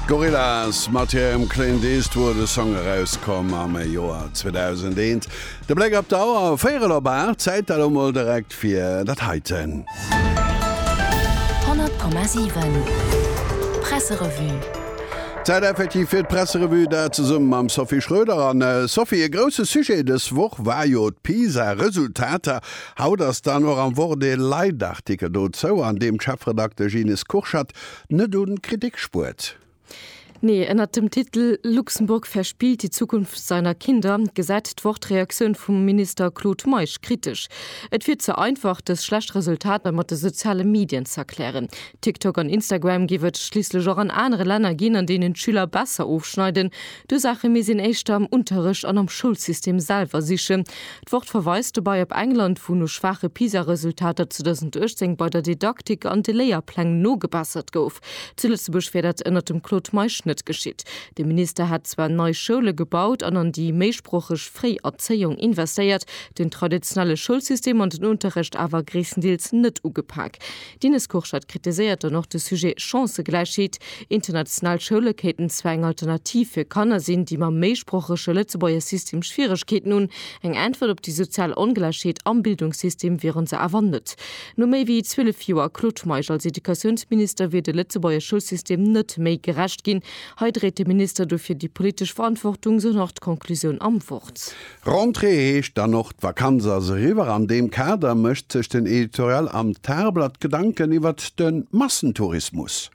Gorillaz, mat hirem Clint Eastwood, e Song erauskomm am Joer 2001. De Bléck op d'Auer, véierel op 8, Zäit elo mol direkt fir dat heiten. 100,7 Presserevue. Zäit effektiv fir d'Presserevue, dat zesummen mam Sophie Schröder. An Sophie, e grousse Sujet dës Woch war jo d'Pisa-Resultater Haut ass dann och am Wort ee Leitartikel dozou, an deem d'Chefredaktesch Ines Kurschat net u Kritik spuert. Nee, ënnert dem Titel Luxemburg verspielt die Zukunft seiner Kinder gesäit d'Wort d'Reaktioun vum Minister Claude Meisch kritesch. Et wier ze einfach, dës schlecht Resultater mat de soziale Medien z'erklären. TikTok an Instagram géif et schliisslech och an anere Länner ginn, an deenen d'Schüler besser ofschneiden. D'Ursaache misst een éischter am Unterrecht an am Schoulsystem selwer sichen, D'Wort verweist dobei op England, wou no schwaache PISA-Resultater 2018 bei der Didaktik an de Léierpläng nogebessert gouf. Zu Lëtzebuerg wär dat ënnert dem Claude Meisch net geschitt. De Minister hätt zwar nei Schoule gebaut an an déi méisproocheg fréi Erzéiung investéiert, den traditionelle Schoulsystem an den Unterrecht awer gréisstendeels net ugepak. D'Ines Kurschat kritiséiert dann och de Sujet Chancëgläichheet. International Schoule kéinten zwar eng Alternativ fir Kanner sinn, déi mam méisproochege Lëtzebuerger System Schwieregkeeten hunn. Eng Äntwert op déi sozial Ongläichheet am Bildungssystem wieren se awer net. No méi wéi 12 Joer Claude Meisch als Educatiounsminister wier de Lëtzebuerger Schoulsystem net méi gerecht ginn. Hei dréit de Minister dofir déi politesch Verantwortung, sou nach d'Conclusioun am Wort. Rentrée heescht dann och, d'Vakanz ass eriwwer. An deem Kader mécht sech den Editorial am Tageblatt Gedanken iwwert de Massentourismus.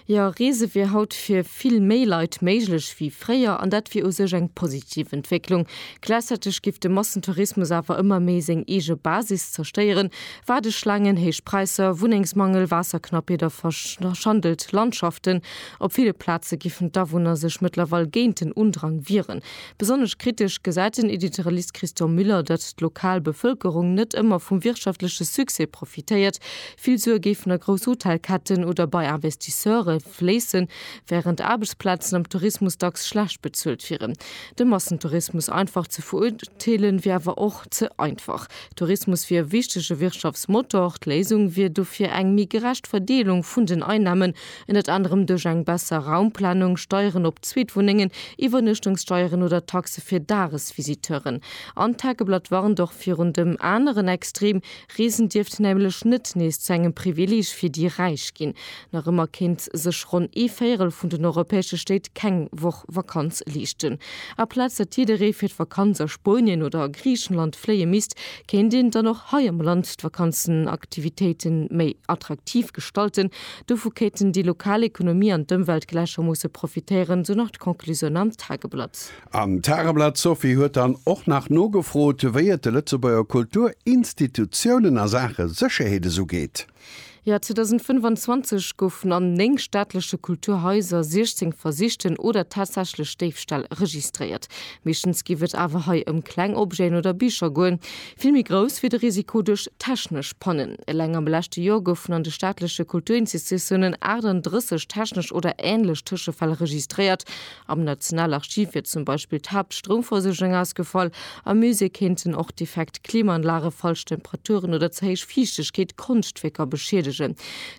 Jo, Reese wier haut fir vill méi Leit méiglech wéi fréier an dat wier u sech eng positiv Entwécklung. Gläichzäiteg géif de Massentourismus awer ëmmer méi seng eege Basis zerstéieren, Waardeschlaangen, héich Präisser, Wunnengsmangel, Waasserknappheet a verschandelt Landschaften. Op ville Plaze géifen d'Awunner sech mëttlerweil géint den Undrang wieren. Besonnesch kritesch gesäit den Editorialist Christian Müller, datt d'lokal Bevëlkerung net ëmmer vum wirtschaftleche Succès profitéiert. Vill Sue géifen a grouss Hotelketten oder bei Investisseure fléissen, wärend Aarbechtsplazen am Tourismus dacks schlecht bezuelt wieren. De Massentourismus einfach ze verurteelen, wier awer och ze einfach. Tourismus wier e wichtege Wirtschaftsmotor. D'Léisung wier dofir eng méi gerecht Verdeelung vun den Einnamen, Ënnert anerem duerch eng besser Raumplanung, Steieren op Zweetwunnengen, Iwwernuechtungssteieren oder Taxe fir Dagesvisiteuren. An d'Tageblatt warnt och virun dem aneren Extrem, Reesen dierft nämlech net nees zu engem Privileeg fir déi Räich ginn. Nach ëmmer kéint sech ronn ee Véierel vun den europäesche Stéit keng Woch Vakanz leeschten. Aplaz datt jidderee fir d'Vakanz a Spuenien oder a Griichenland fléie misst, kéint een dann och hei am Land d'Vakanzenaktivitéite méi attraktiv gestalten, Dovu kéinten déi lokal Ekonomie an d'Ëmwelt gläichermoosse profitéieren, sou nach d'Conclusioun am Tageblatt. Am Tageblatt, D'Sophie huet dann och nach nogefrot, wéi et de Lëtzebuerger Kulturinstitutiounen a Saache Sécherheet esou geet. Jo, 2025 goufen an 9 staatleche Kulturhaiser 16 versichten oder tatsächlech Déifställ registréiert. Meeschtens géif et awer hei ëm kleng Objeten oder Bicher goen. Vill méi grouss wier de Risiko duerch technesch Pannen. Eleng am leschte Joer goufen an de staatleche Kulturinstitutiounen 38 technesch oder änlech Tëschefäll registréiert. Am Nationalarchiv wier zum Beispill d'Haaptstroumversuergung ausgefall. Am Musée kéinten och defekt Klimaanlage, falsch Temperaturen oder ze héich Fiichtegkeet Konschtwierker beschiedegen.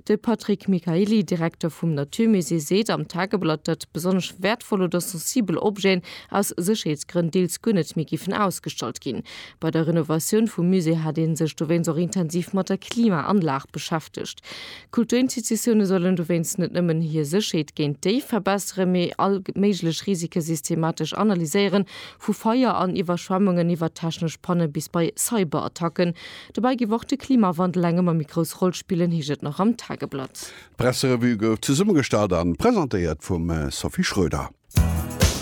De Patrick Michaely, Direkter vum Naturmusée, seet am Tageblatt, datt besonnesch wäertvoll oder sensibel Objeten aus Sécherheetsgrënn deels guer net méi géifen ausgestallt ginn. Bei der Renovatioun vum Musée hat ee sech dowéinst och intensiv mat der Klimaanlag beschäftegt. Kulturinstitutioune sollen dowéinst net nëmmen hir Sécherheet géint Déif verbesseren, mee all méiglech Risike systematesch analyséieren, vu Feier an Iwwerschwemmungen iwwer technesch Panne bis bei Cyberattacken. Dobäi géif och de Klimawandel eng ëmmer méi grouss Roll spillen, heescht et nach am Tageblatt. D'Presserevue gouf zesummegestallt a presentéiert vum Sophie Schroeder.